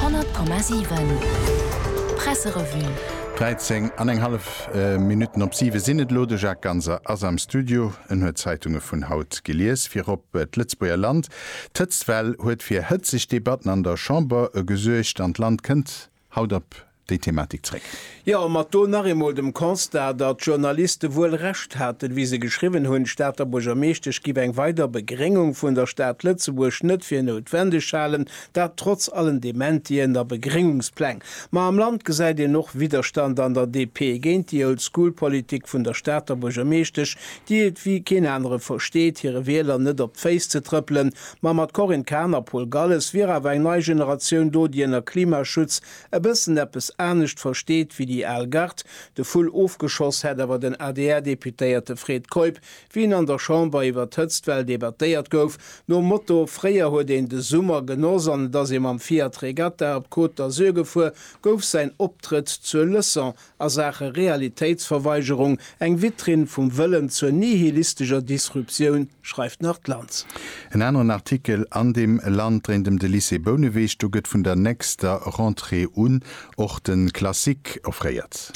100,7 Presserevue. 13 an eng hallef Minutten op siwe sinn et elo. De Jacques Ganser ass am Studio. En huet d'Zeitunge vun haut gelies. Virop d'Lëtzebuerger Land. D'Hëtztwell huet fir hëtzeg Debatten an der Chamber gesuergt an d'Land kënnt Haut op déi Thematik zréck. Jo, mat do nach eemol dem Constat, datt d'Journaliste wuel Recht haten, wéi se geschriwwen hunn, d'Stater Buergermeeschtesch giff eng weider Begréngung vun der Stad Lëtzebuerg net fir noutwendeg halen, dat trotz allen Dementien a Begréngungspläng. Ma am Land gesäit een och Widderstand an der DP géint déi Old-School-Politik vun der Stater Buergermeeschtesch, déi et wéi keen anere versteet, hire Wieler net op d'Féiss ze trëppelen, Ma mat Corinne Cahen a Paul Galles wier awer eng nei Generatioun do, déi ënner Klimaschutz e bëssen eppes anescht versteet wéi déi al Gard. De Vull ofgeschoss hätt awer den ADR-Deputéierte Fred Keup, wéi hien an der Chamber iwwer d'Hëtztwell debattéiert gouf, nom Motto, Fréier huet een de Summer genoss an et ass ee mam Fiat Regatta op d'Côte d'Azur gefuer, gouf säin Optrëtt zur Leçon a Saache Realitéitsverweigerung eng Vitrinn vum Wëllen zur nihilistescher Disruptioun, schreift nach d'Lanz. En aneren Artikel an dem Land dréint ëm de Lycée Bouneweg. Do gëtt vun der nächster Rentrée un och de Classique offréiert.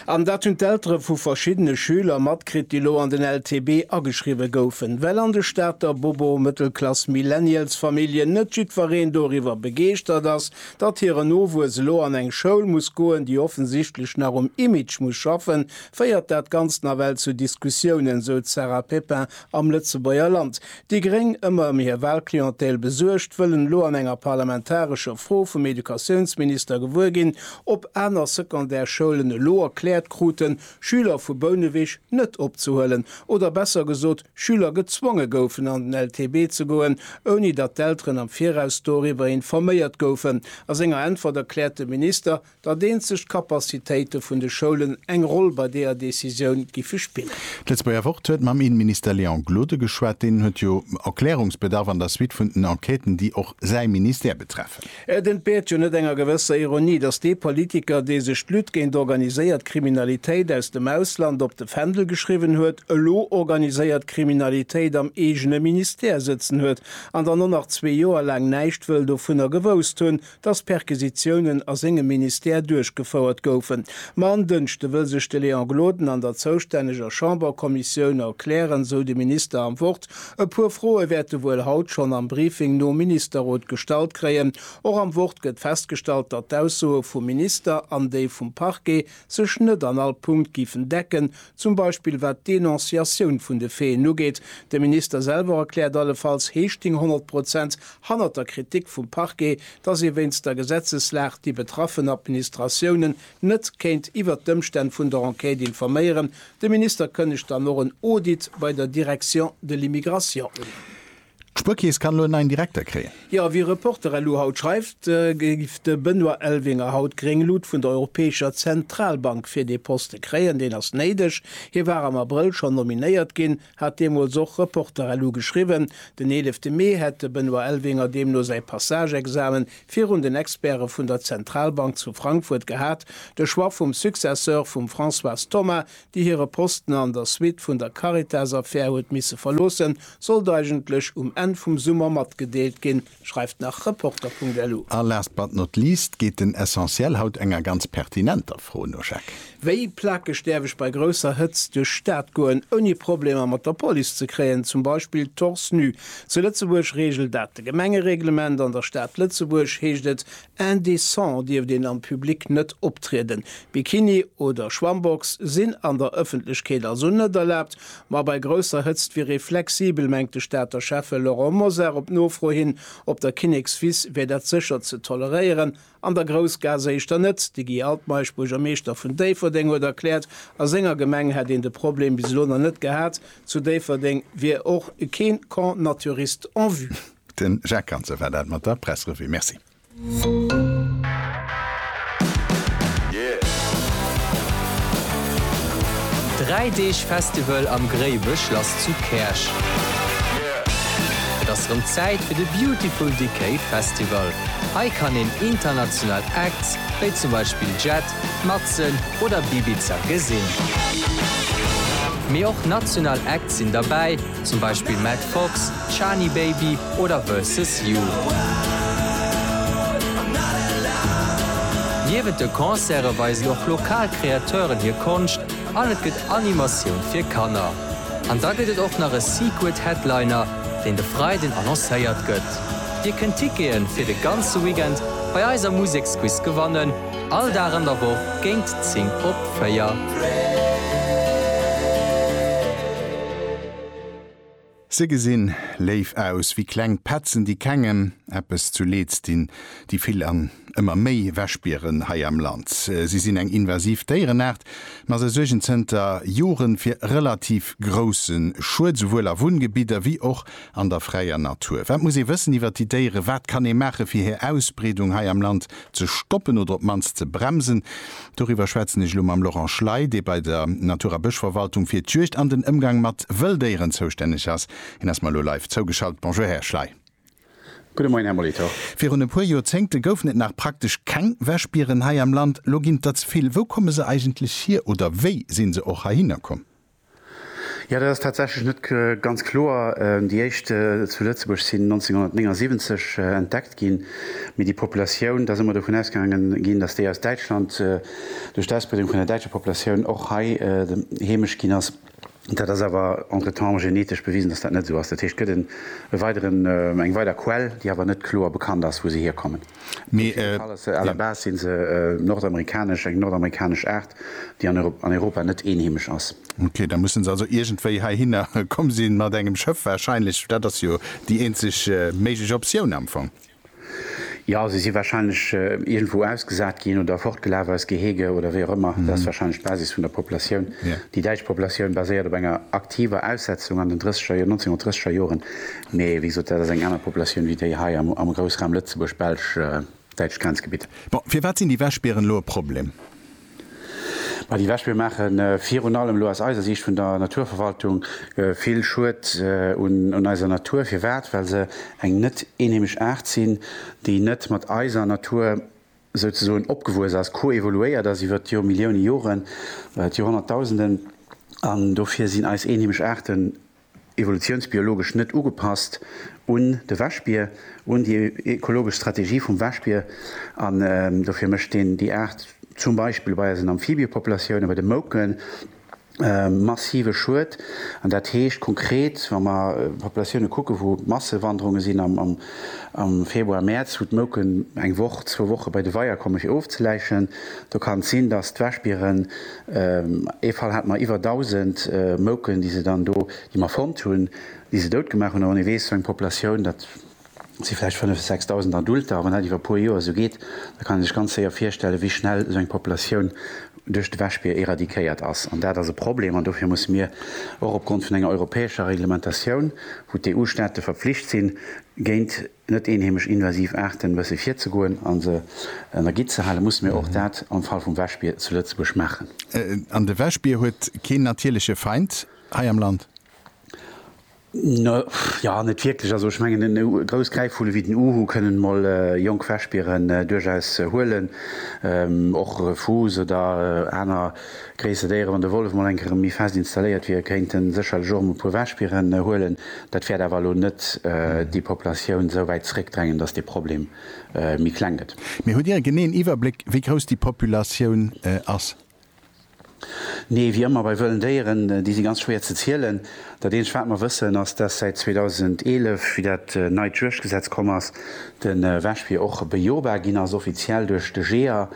An dat hunn d'Eltere vu verschiddene Schüler matkritt, déi elo an den LTB ageschriwwe goufen. Well an de Stater Bobo-Mëttelklass-Millennials-Familljen net jiddwereen doriwwer begeeschtert ass, Datt hiren Nowuess elo an eng Schoul muss goen, déi offensichtlech nach um Image muss schaffen, féiert dat Ganzt nawell zu Diskussiounen, esou d'Sarah Pepin am Lëtzebuerger Land. Déi Gréng, ëmmer ëm hir Wahlclientèle besuergt, wëllen elo an enger parlamentarescher Fro vum Educatiounsminister gewuer ginn, ob aner Secondaire-Schoulen elo erkläert kruten, Schüler vu Bouneweg net opzehuelen, oder besser gesot, Schüler gezwonge goufen an den LTB ze goen, ouni datt d'Elteren am Viraus doriwwer informéiert goufen. A senger Äntwert erkläert de Minister, datt eenzeg d'Capacitéite vun de Schoulen eng Roll bei deeër Decisioun giffe spillen. D'Lëtzebuerger Wort huet mam Innenminister Léon Gloden geschwat. Deen huet jo Erklärungsbedarf an der Suite vun den Enquêten, déi och säi Ministère betreffen. Et entbeert jo net enger gewësser Ironie, datt dee Politiker, dee sech d'Lutte géint organiséiert Kriminalitéit aus dem Ausland op de Fändel geschriwwen huet, elo organiséiert Kriminalitéit am eegene Ministère sëtzen huet an dann och nach zwee Joer laang näischt wëll dovunner gewousst hunn, datt Perquisitiounen a sengem Ministère duerchgefouert goufen. Ma en Dënschde wëll sech de Léon Gloden an der zoustänneger Chamberkommissioun erklären, sou de Minister am Wort E puer Froe wäert e wuel haut schonn am Briefing nom Ministerrot gestallt kréien. Och am Wort gëtt festgestallt, datt d'Aussoe vum Minister an déi vum Parquet sech net an all Punkt géifen decken, zum Beispill wat d'Denonciatioun vun de Faiten ugeet. De Minister selwer erkläert allefalls Heeschting 100 Prozent hannert der Kritik vum Parquet, datt ee wéinst der Gesetzeslag déi betraffen Administratiounen net kéint iwwert d'Ëmstänn vun der Enquête informéieren, De Minister kënnegt dann och en Audit bei der Direction de l'immigration un. D'Spuerkeess kann elo en neien Direkter kréien. Jo, wéi Reporter elo haut schreift, géif de Benoît Elvinger haut gréng Lut vun der Europäescher Zentralbank fir dee Poste kréien. Deen ass néideg, hie war am Abrëll schonn nominéiert ginn. hat deemools och Reporterlu geschriwwen. Den eelefte Mee hätt de Benoît Elvinger deemno säi Passage-Examen virun den Experte vun der Zentralbank zu Frankfurt gehat. De Choix vum Successeur vum Françoise Thomas, déi hire Posten an der Suite vun der Caritas-Affär huet misse verloossen, sollt eigentlech um Enn vum Summer matgedeelt ginn. Schreift nach Reporter.lu. A last but not least geet den Essentiel haut enger ganz pertinenter Fro no, Jacques. Wéi plakeg däerf ech bei grousser Hëtzt duerch d'Stad goen, ouni Problemer mat der Police ze kréien, zum Beispill torse nu? Zu Lëtzebuerg reegelt dat de Gemengereglement. An der Stad Lëtzebuerg heescht et, Indecent dierft een am Public net optrieden. Bikini oder Schwammbox sinn an der Ëffentlechkeet also net erlaabt. Ma bei grousser Hëtzt wier ee flexibel, mengt de Stater Schäffe Laurent Mosar. Op Nofro hin op der Kinnekswiss wier dat sécher ze toleréieren, an der Groussgaass éischter net. De Guy Altmeisch, Buergermeeschter vun Déifferdeng, huet erkläert, a senger Gemeng hätt een de Problem bis elo nach net gehat. Zu Déifferdeng wier och kee Camp naturiste en vue. Den Jacques Ganser war dat mat der Pressrevue. Merci. Dräi Deeg Festival am Gréiwechlass zu Käerch. Et ass rëm Zäit fir de Beautiful Decay Festival. Hei kann een international Acts wéi zum Beispill Jet, Matzen oder Bibiza gesinn. Mee och national Acts sinn derbäi. zum Beispill Matt Fox, Shani Baby oder Versus You. Niewent de Concerte weisen och lokal Kreateuren hir Konscht an et gëtt Animatioun fir Kanner. An da gëtt et och nach e Secret Headliner, deen de Freiden annoncéiert gëtt. Dir kënnt Tickete fir de ganze Weekend bei eiser Museksquiz gewannen. All Dag an der Woch géint 10 op 4. Se gesinn léif aus wéi kleng Petzen, déi kengem eppes zu Leeds dinn, déi vill an ëmmer méi Wäschbieren hei am Land. Si sinn eng invasiv Déierenaart, ma se suergen zënter Joren fir relativ grousse Schued, souwuel a Wunngebidder wéi och an der fräier Natur. Wat muss ee wëssen iwwer déi Déieren? Wat kann ee maachen, fir hir Ausbreedung hei am Land ze stoppen oder op d'mannst ze bremsen. Doriwwer schwätzen ech elo mam Laurent Schley, dee bei der Natur a Bëschverwaltung fir d'Juegd an den Ëmgang mat Wëlldéieren zoustänneg ass. Hien ass mer elo live zougeschalt. Bonjour, Här Schley. Gudde Moien, Här Molitor. Virun e puer Joerzéngte goufen et nach praktesch keng Wäschbieren hei am Land. Elo ginn et der ze vill. Wou komme se eigentlech hier oder wéi si se och heihinner komm? Jo, dat ass tatsächlech net ganz kloer. Déi éischt zu Lëtzebuerg sinn 1979 entdeckt ginn, mee déi Populatioun, et ass ëmmer dovun ausgaange ginn, datt déi aus Däitschland duerch d'Ausbreedung vun der däitscher Populatioun och hei heemesch ginn ass. Dat ass awer entretemps genetesch bewisen, datt dat net esou ass. Dat heescht, et gëtt e weideren, eng weider Quell, déi awer net kloer bekannt ass, wou se hierkommen. Mee. À la base si se nordamerikanesch, eng nordamerikanesch Aart, déi an Europa net eenheemesch ass. Ok, da musse se also iergendwéi heihinner komm sinn, mat engem Schëff wahrscheinlech. Dat ass jo déi eenzeg méiglech Optioun am Fong. Jo, se si wahrscheinlech iergendwou ausgesat ginn oder fortgelaf aus Gehege oder wéi och ëmmer. Dat ass wahrscheinlech d'Basis vun der Populatioun. Déi däitsch Populatioun baséiert op enger aktiver Aussetzung an den 1930er Joren, Mee wéi gesot, dat ass eng aner Populatioun wéi déi hei am Groussraum Lëtzebuerg, Belsch, däitscht Grenzgebitt. Bon, firwat sinn déi Wäschbieren elo e Problem? Ma déi Wäschbier maache virun allem, elo aus eiser Siicht vun der Naturverwaltung, vill Schued un eiser Natur. Firwat? Well se eng net eenheemesch Aart sinn, déi net mat eiser Natur souzesoen opgewuess ass, koevoluéiert ass iwwer d'Millioune Joren, d'Joerhonnertdausenden. An dofir sinn eis eenheemesch Aarten evolutiounsbiologesch net ugepasst un de Wäschbier, un déi ekologesch Strategie vum Wäschbier, an dofir mécht een déi Aart zum Beispill bei eisen Amphibiepopulatiounen, bei de Mouken, massive Schued. An dat heescht konkret, wa mer Populatiounen kucken, wou Massewanderunge sinn am Februar, Mäerz, wou d'Mouken eng Woch, zwou Woche bei de Weier komme fir ofzeläichen, do kann et sinn, datt d'Wäschbieren, Ee Fall hate mer iwwer 1.000 Mouken, déi se dann do, déi mer fonnt hunn, déi se dout gemaach hunn. A wann ee weess, sou eng Populatioun, dat si vläicht 5 bis 6.000 Adulter, a wann dat iwwer e puer Joer esou geet, da kann ee sech ganz séier virstellen, wéi schnell esou eng Populatioun duerch de Wäschbier éradiquéiert ass. An dat ass e Problem. An dofir musse mir och opgrond vun enger europäescher Reglementatioun, wou d'EU-Staate verpflicht sinn, géint. net eenheemesch invasiv Aarten wësse virzegoen a se an der Gitt ze halen, musse mir och dat am Fall vum Wäschbier zu Lëtzebuerg maachen. An de Wäschbier huet keen natierleche Feind hei am Land? Jo, net wierklech. Also ech mengen, e grouss Gräifvulle wéi den Uhu kënnen mol jonk Wäschbieren duerchaus huelen. Och Refus oder aner. Gréisser Déiere, wann de Wollef mol eng Kéier erëm méi fest installéiert wier, kéint e sécherlech och erëm e puer Wäschbieren huelen. Dat wäert awer elo net déi Populatioun esou wäit zeréckdrängen, datt dee Problem méi kleng gëtt. Mee hutt Dir e geneeën Iwwerbléck, wéi grouss déi Populatioun ass? Nee, wéi ëmmer bei wëllen Déieren, déi si ganz schwéier ze zielen. Dat eenzegt, wat mer wëssen, ass, datt säit 2011, wéi dat neit Juegdgesetz komm ass, de Wäschbier och bejobar ginn ass, offiziell duerch de Jeeër.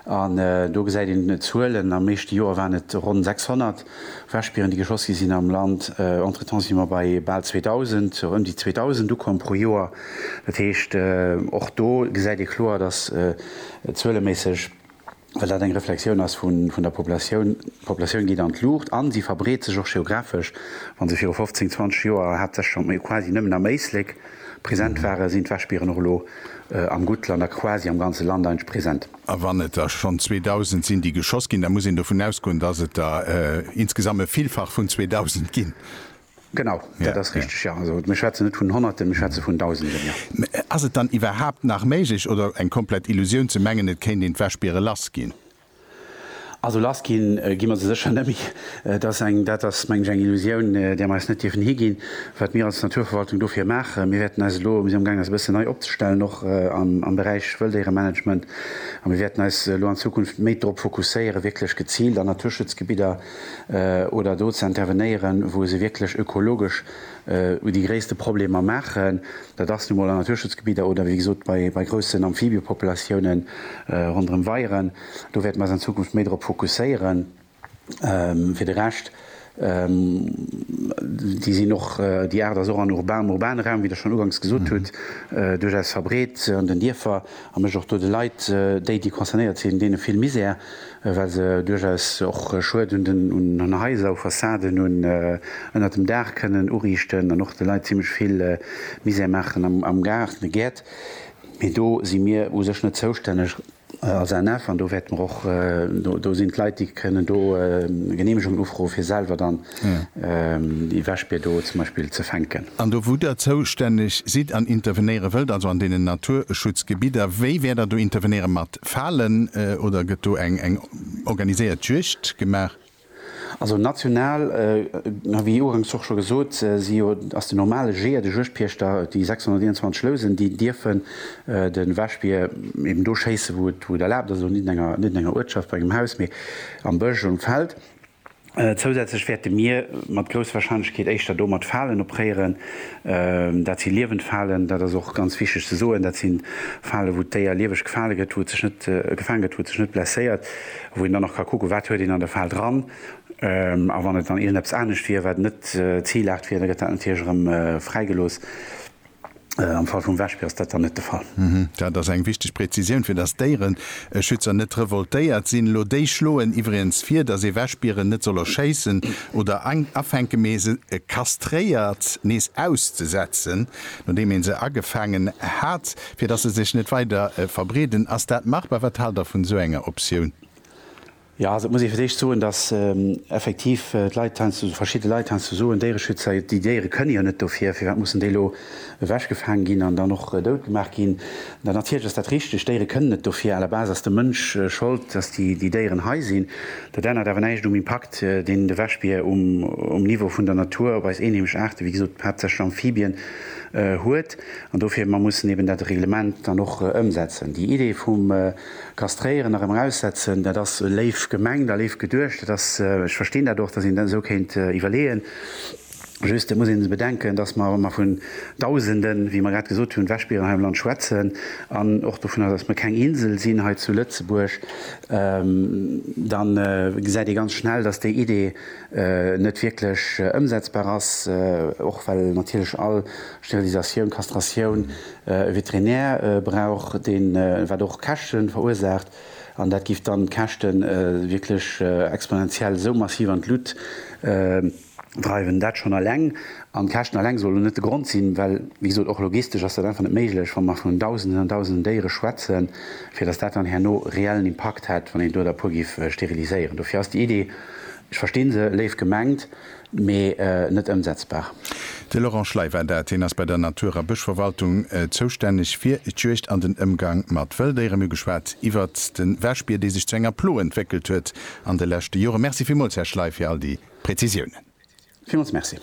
An do gesäit een d'Zuelen, am meeschte Joer waren et ronn 600 Wäschbieren, déi geschoss gi sinn am Land. Entretemps si mer bei bal 2.000, ëm déi 2.000 ukomm pro Joer. Dat heescht, och do gesäit ee kloer, datt zueleméisseg, well dat eng Reflexioun ass vun der Populatioun, d'Populatioun geet an d'Luucht a se verbreet sech och geografesch. Wa se viru 15, 20 Joer haaptsächlech, quasi nëmmen am Éislek, Present ware sinn d'Wäschbieren och elo am Guttland a quasi am ganze Land eidg present. A wann et der schonn 2.000 sinn, déi geschoss ginn, da muss een dovun ausgoen, dass et der insgesamt e Villfach vun 2.000 ginn. Genau, dat ass richteg, jo. Also mir schwätzen net vun Honnerten, mir schwätze vun Dausenden, jo. Mä ass et dann iwwerhaapt nach méiglech oder eng komplett Illusioun ze mengen, et kéint een d'Wäschbiere lass ginn? Also lass gi gi mer se sécher net méi. Et ass eng, dat ass meng ech eng Illusioun, där mer eis net dierfen higinn. Wat mir als Naturverwaltung dofir maachen, mir wäerten eis elo, mir si am gaang eis e bëssen nei opzestellen, och am Beräich Wëlldéieremanagement, a mir wäerten eis elo an Zukunft méi drop fokusséieren, wierklech geziilt an Naturschutzgebidder oder do ze intervenéieren, wou se wierklech ökologesch, u déi gréisste Problemer maachen. Dat ass nu mol an Naturschutzgebidder oder, wéi gesot, bei, bei groussen Amphibiëpopulatiounen ronderëm Weieren. Do wäerte mer eis an Zukunft méi drop fokusséieren. Fir de Rescht, déi sinn och, déi Aart ass och an urbanem, urbanen Raum, wéi Der schonn uganks gesot hutt, duerchaus verbreet an den Dierfer a mécht och do de Leit, déi, déi concernéiert sinn, deene vill Misär. well se duerchaus och Schued un den Haiser, u Fassaden, un ënnert dem Daach kënnen uriichten an och de Leit zimmlech vill Misère maachen am Gaart, an de Gäert. Mee do si mir u sech net zoustänneg als ANF an do wäerte mer och, do sinn d'Leit, déi kënnen do Geneemegungen ufroen, fir selwer dann déi Wäschbier do zum Beispill ze fänken. An do wou Der zoustänneg sidd an intervenéiere wëllt, also an deenen Naturschutzgebidder, wéi wäert Der do intervenéiere mat? falen oder gëtt do eng eng organiséiert Juegd gemaach? Also national, wéi uganks och scho gesot, si jo ass den normale Jeeër, de Juegdpiechter, déi 621 Lousen, déi dierfen de Wäschbier eben do schéisse wou et erlaabt ass, also net an enger Uertschaft bei engem Haus, mee am Bësch, um Feld. Zousätzlech wäerte mir mat grousser Warscheinlechkeet éischter do mat Falen opréieren. Dat si liewend Falen, dat ass och ganz wichteg ze soen. Dat sinn Falen, wou d'Déier lieweg gefale gëtt, wou et sech net gefaang gëtt, wou et sech net blesséiert, wou een dann nach ka kucken, wat huet een an der Fal dran. A wann et dann iergendeppes anescht wier, wat net Zilaart wier, da gëtt dat natierlech erëm fräigelooss. Am Fall vum Wäschbier ass dat dann net de Fall. Dat ass eng wichteg Präzisioun, fir dass Déiereschützer net revoltéiert sinn elo. Déi schloen iwwregens vir, dass ee Wäschbieren net soll erschéissen oder afänken, mee se kastréiert nees auszesetzen, nodeem ee se agefaangen hat, fir dass se sech net weider verbreeden. Ass dat machbar? Wat haalt Der vun esou enger Optioun? Jo, also et muss ee fir d'éischt soen, datt effektiv d'Leit heiansdo, verschidde Leit heiansdo soen, Déiereschützer, déi Déiere kënne jo net dofir, firwat mussen déi elo ewechgefaang ginn an dann och dout gemaach ginn? Mä natierlech ass dat richteg, Déiere kënnen net dofir. À la base ass de Mënsch Schold, datt déi Déieren hei sinn. Dat ännert awer näischt um Impakt, deen de Wäschbier um Niveau vun der Natur op eis eenheemesch Aarten, wéi gesot haaptsächlech Amphibien, huet. An dofir, mer mussen eeben dat Reglement dann och ëmsetzen. Déi Idee vum. Kastréieren a rëm eraussetzen, dat ass léif gemengt a léif geduecht. Dat ass, ech verstinn dat och, datt een dat esou kéint iwwerleeën. Just, et muss ee bedenken, datt mer, wa mer vun Dausenden, wéi mer grad gesot hunn, Wäschbieren hei am Land schwätzen an och dovun, datt mer keng Insel sinn hei zu Lëtzebuerg, da gesäit ee ganz schnell, datt déi Idee net wierklech ëmsetzbar ass, och well natierlech all Sterilisatioun, Kastratioun, e Veterinär brauch deen, wat och Käschten verursaacht, an dat giff dann d'Käschten wierklech exponentiell esou massiv an d'Lut dreiwen. Dat schonn alleng, an d'Käschten alleng sollen net de Grond sinn, well wéi gesot och logistesch ass dat einfach net méiglech, wa mer vun Dausenden an Dausenden Déiere schwätzen, fir datt dat dann herno reellen Impakt hätt, wann een do der e puer giff steriliséieren. Dofir ass déi Idee, ech verstinn se, léif gemengt, mee net ëmsetzbar. De Laurent Schley war dat. Hien ass bei der Natur a Bëschverwaltung zoustänneg fir d'Juegd an den Ëmgang mat Wëlldéiere. Mir hu geschwat iwwert de Wäschbier, dee sech zu enger Plo entwéckelt huet an de leschte Jore. Merci villmools, Här Schley, fir all déi Prezisiounen. Villmools merci.